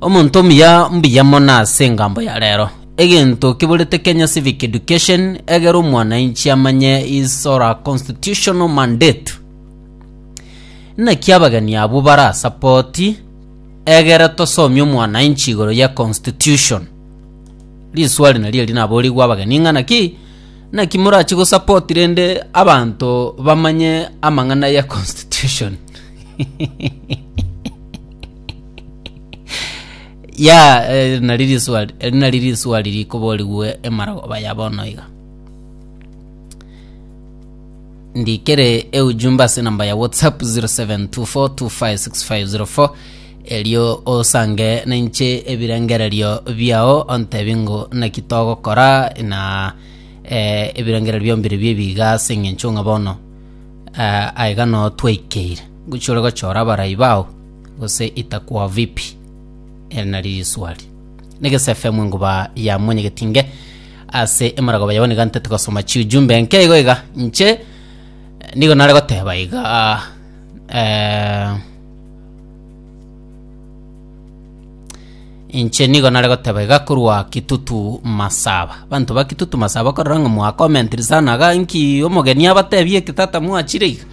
Omonto omuya mbuya mono ase engambo ya rero. Egento kiborete Kenya Civic Education egere omwanainchi amanye his or her constitutional mandate. Naki abageni abwo barasapoti egere tosomie omwanainchi igoro ya constitution. Riswali nario eri naborigwe abageni ng'a naki naki morachi gosapoti rende abanto bamanye amang'ana ya constitution. ya eh, nari riswa eh, nari riswa riri koborigwe emaragoba ya bono iga ndikere eujumbe ase namba ya whatsapp 0724256504 erio osange ninche ebirengererio biao ontebi ngo naki togokora na eh, ebirengererio biombiri biebiga ase eng'encho ng'a bono eh, aiga no twaikeire gochia ore gochora abarai bao gose itakuwa vipi? Ere nari riswali. Negesafe mwe nguba ya mwenyegetinge ase emarago bayabo niga ntete gosoma chiujumbe enke igo iga nche nigo nare goteba iga eh, inche nigo nare goteba iga korwa kitutu masaba banto ba kitutu masaba korora ng'a mwakomentiri sana iga nki omogeni abatebie ki tata mwachire iga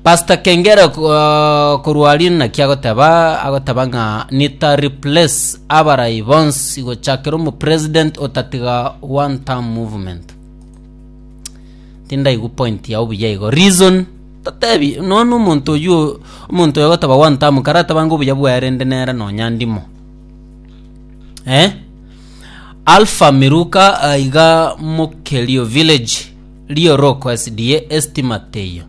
Pastor kengere uh, korwa riri naki agoteba agoteba ng'a nita replace abarai bonsi gochakera omu president otatiga one term movement tindaigu point ya obuya igo reason totebi nono omonto oyu omonto oyo agoteba one term karateba ngo obuya bwaerende nere nonya ndimo eh alpha miruka aiga mokerio village rioroko sda estima teiyo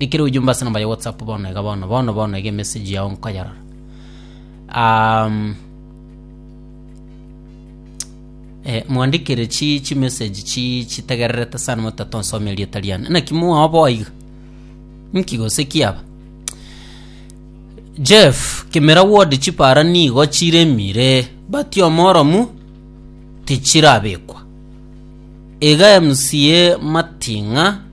Ekero oyoyomba ase namba ya WhatsApp bono iga bono bono bono iga emessage yao nkoyerora. Um, eh, mwandikire chi chi message chi chitegererete sana motata onsome erieta riane naki mwaoboa iga nki gose kiaba jeff kimera wodi chipara nigo chiremire bati omoromu tichirabekwa iga mca mating'a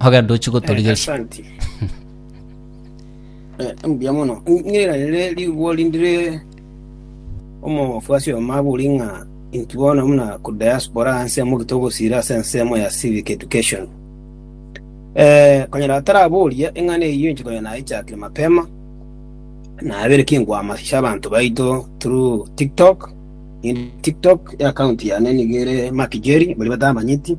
Ogende ochie Eh, gotorigeria. asanti. Eh, mbuya mono. Ng'ira rere rigwo rindire omofwasi omo abori ng'a inki bono muna ku diaspora anse mogite ogosira ase ensemo ya civic education. Eh, konyora ataraboria eng'ana eyio inche konya naichakire mapema. Nabere kingwama ase abanto baito through TikTok. In TikTok account yane nigo ere Mark Jerry, baria batamanyeti.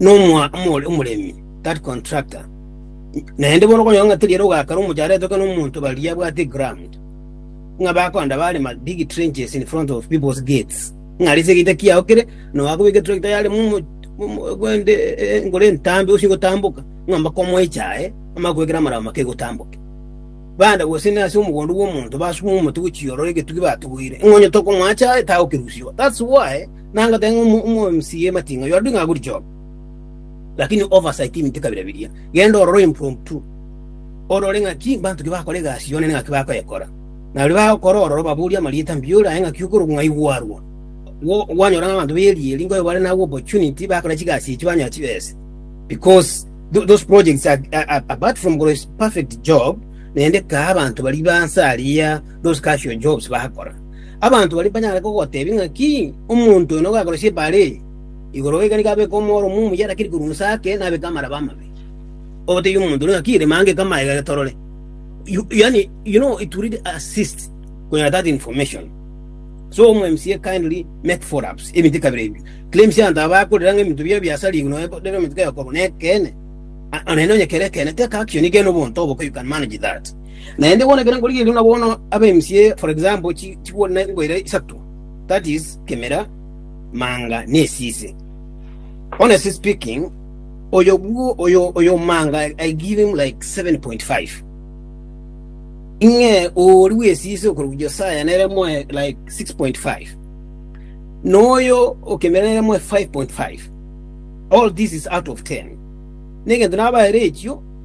nomoa- omore- omoremi, that contractor. Naende bono okonyora ng'a teri ere ogakera omochara etoke na omonto baria abwate eground, ng'a bakoenda barema big trenches in front of people's gates, ng'a arise egeita kiago kere, na ogakobeka etractor yarema omo- omo- gwende eh, enkoro entambe gose egotamboka, ng'a mpaka omoeche aye, amanye koekera amarao make egotamboke. Bande gose na ase omogondo bwa omonto basube omote gochia ororo egetugi batuguire, ng'a onye tokomoacha aye tagokerusiwa. That's why Nagoteba ng'a omobisi bw'ematinga oyo arue ng'a agure chioka, lakini oversight emite kabere biria. Genda orore impromptu, orore ng'aki mbanto ki bakora egasi y'Omonene ng'aki bakoyekora. Na baria bagokora ororo obaborie amarieta mbioria aye ng'aki okorokwa ng'a aigwe arua. Gwo- Gwanyora ng'a abanto b'erieri nkoyo bare nabwo opportunity bakore chigasi echi banyore chibesa. Because tho- those projects are, are, are apart from korwa ase perfect job, naende kaa abanto baria ba nsa aria those casual jobs bagakora. Abanto baria mbanyare kogotebia ng'aki omonto oyo nogakora chibare eye igoro goika nigo abeke omoro omuya omuya arakiri korwa inse ake na abeke amaraba amabe. Ogotebia omonto oria ng'aki rema ngeka amaega ere torore. You, yani, you know, it really assists konyora that information. So omo MCA kindly make follow ups ebinto kabira ebio. Claims abanto aba bakorera ng'a ebinto bia biasarigu noe rero omonto kaya okorwa na ekene. Onene onye kere ekene take action gena obonto oboke you can manage that. Naende bono ekero nkorigereria buna bono ab'emisio eye, for example, chi- chigoro ne ngoira isato, that is, kemera, manga, na esisi. Honestly speaking, oyo bwo oyo oyo manga I give him like 7.5. Ing'e ori bw'esisi okorwa Josiah nere moe like 6.5. Noyo okemera nere moe 5.5. All this is out of 10. Negento nabaere echio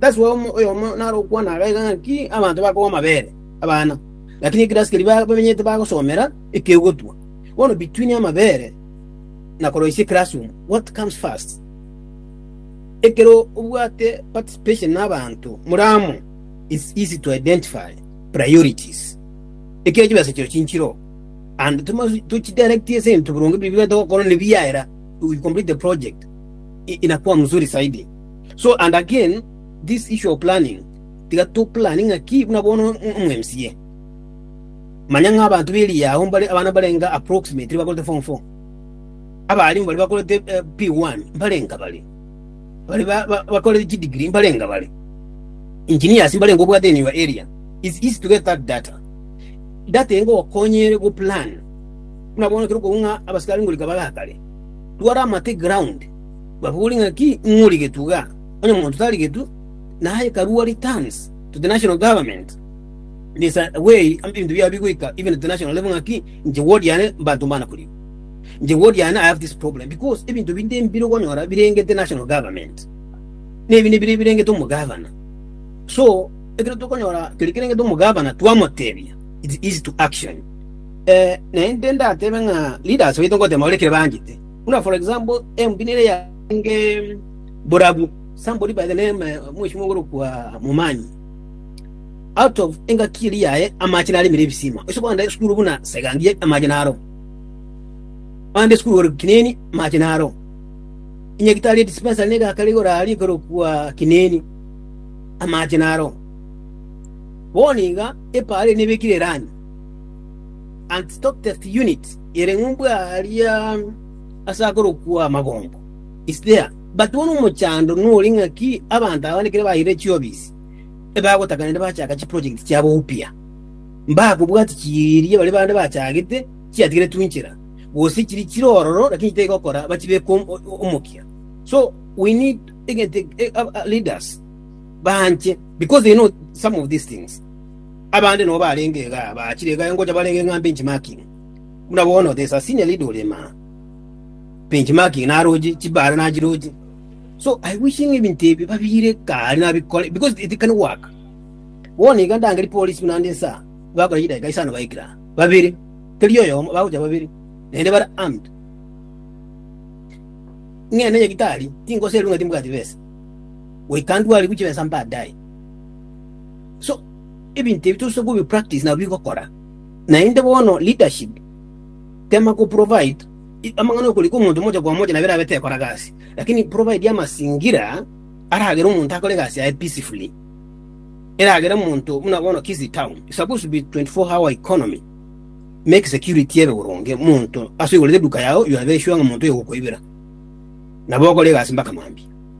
Gasi oyomo oyomo nare okwana gake ng'a inki abanto bakogwa amabere abana, lakini ekero asikeri bamenyete bagosomera ekegotwa, bono between amabere na koroisia classroom what comes first? Ekero obwate participation na abanto more amo it's easy to identify priorities ekero chibesa chiao chinchire oo and tochi tochidirectie ase ebinto boronge biria bigotaka gokora ne biaera you will complete the project inakuwa mzuri zaidi. So and again this issue of planning tiga to plane ng'aki buna bono omo mca manya ng'a abanto b'eria yao mbare abana barenga approximately bakorete form 4 abarimu bari bakorete eh, p1 mbarenga bari bari ba- ba- bakorete chidigiri mbarenga bari engineers mbarenga obwate in your area it's easy to get that data data engo okonyere go plan buna bono kero kog'u ng'a abasikari ngorika bagakare twara amate ground Bakobori ng'aki ing'origetwe iga? Onye omonto tarigetwe, naye karua returns to the national government. It is a way amo ebinto biao bigoika even at the national level ng'aki inche ward yane mbato mbana korigwa. Inche ward yane I have this problem because ebinto binde mbire okonyora birengete national government. Nebinde bire birengete omogavana. So ekero tokonyora keri kerengete omogavana twamotebia it is easy to action. Eh, naende ndatebe ng'a leaders baito ngotema baria ekero bangete. Buna for example, embi nere yarenge borabu. Somebody by the name eh, mweshimo ogorokwa Momanyi. Out of engaki eri yaye amache naremire ebisima. Ese kwanda esukuru buna segangie amache naro. Kwanda esukuru ore kineni amache naro. Inyagitari dispensary nega kare gorari ekorokwa kineni amache naro. Boniga epare nebekire rani and stock test unit Ere ng'umbu aaria ase akorokwa Amabombo, Isthea, batebwa nomochando nore ng'aki abanto aba ekero bairire chiofisi, ebagotaka naende bachaka chiprojekti chiabo upya. Mbakobwati chiria baria bande bachagete chiatigeretwe inchera, gose chiri chire ororo lakini tigokora bachibeke omokia. So we need egento leaders banche because they know some of these things. Abande nabo barenge igaa bachire igaa ngocha bare ng'a benchmarking. Buna bono there is a senior leader ore ime aa, benchmarking naroche, chibare nachiroche. So I wishing ng'a ebinto ebi babiire kaari nabikore because it can work. Bono iga ndangeri polisi buna ande nsa bakora chidakika isano baikire aa, babere, tari oyomo, bagocha babere, naende bare armed. Ng'ende nyagitari tingoserwa ng'a timbwati besa, we can do ariwu chibesa mbaadaye. So ebinto ebi tose kobi practice nabo bigokora. Naende bono leadership tema ko provide amang'ana okori kw'omonto mocha kwa mocha nabere abe tekora gasi, lakini provide amasingira aragere omonto akore egasi yaye peacefully, eragere omonto buna bono Kisii town is supposed to be 24 hour economy, make security ebe boronge omonto ase oigorete eduka yao you are very sure ng'a omonto oyo ogokoibera nabo okore egasi mpaka mambia.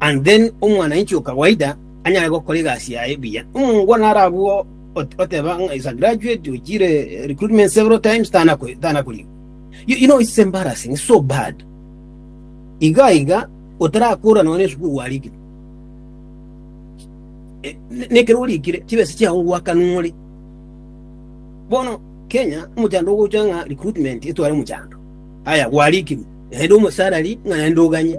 And then omwananchi o kawaida anyare gokora egasi yaye buya. Omongwana naro abwo ot- oteba ng'a is a graduate, ochire eh, recruitment several times, tanako- tanakorigwa. You, you know, it's embarrassing, it's so bad. Iga iga, otarakora nonya esukuru warikire. Eh, ne- Nekero orikire, chibesa chiao gwaka nore. Bono, Kenya, omochando ogocha ng'a recruitment etware omochando. Aya, gwarikirwe. Naende omosalary ng'a naende oganye.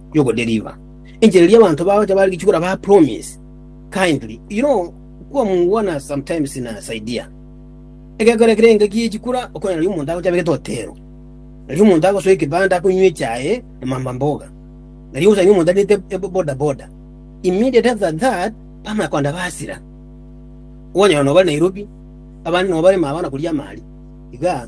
y'ogodeliver enchera eria abanto bagocha bare gichukura ba promise kindly you know kuwa mungwana sometimes na saidia egekora ekere engaki yechikura okona nario omonto agocha abegete otero nario omonto agosoa ekebanda akonywa echae na mamba mboga nario osanga omonto abete boda boda immediate after that bamanya kogenda basira kwanyora nobare Nairobi abande nobare mabana koria amari iga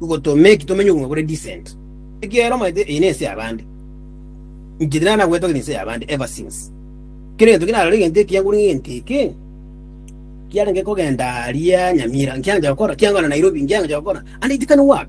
Goto make tomenye obogima bore decent. Ekiagera omanyete eye nense yabande. Inche tina nagwetwa gete ense yabande ever since. Kera egento ki narore egento ekiya ngore egento eke kiarenge kogenda aria Nyamira nkiancha gokora kiangora Nairobi nkiancha gokora and it can work.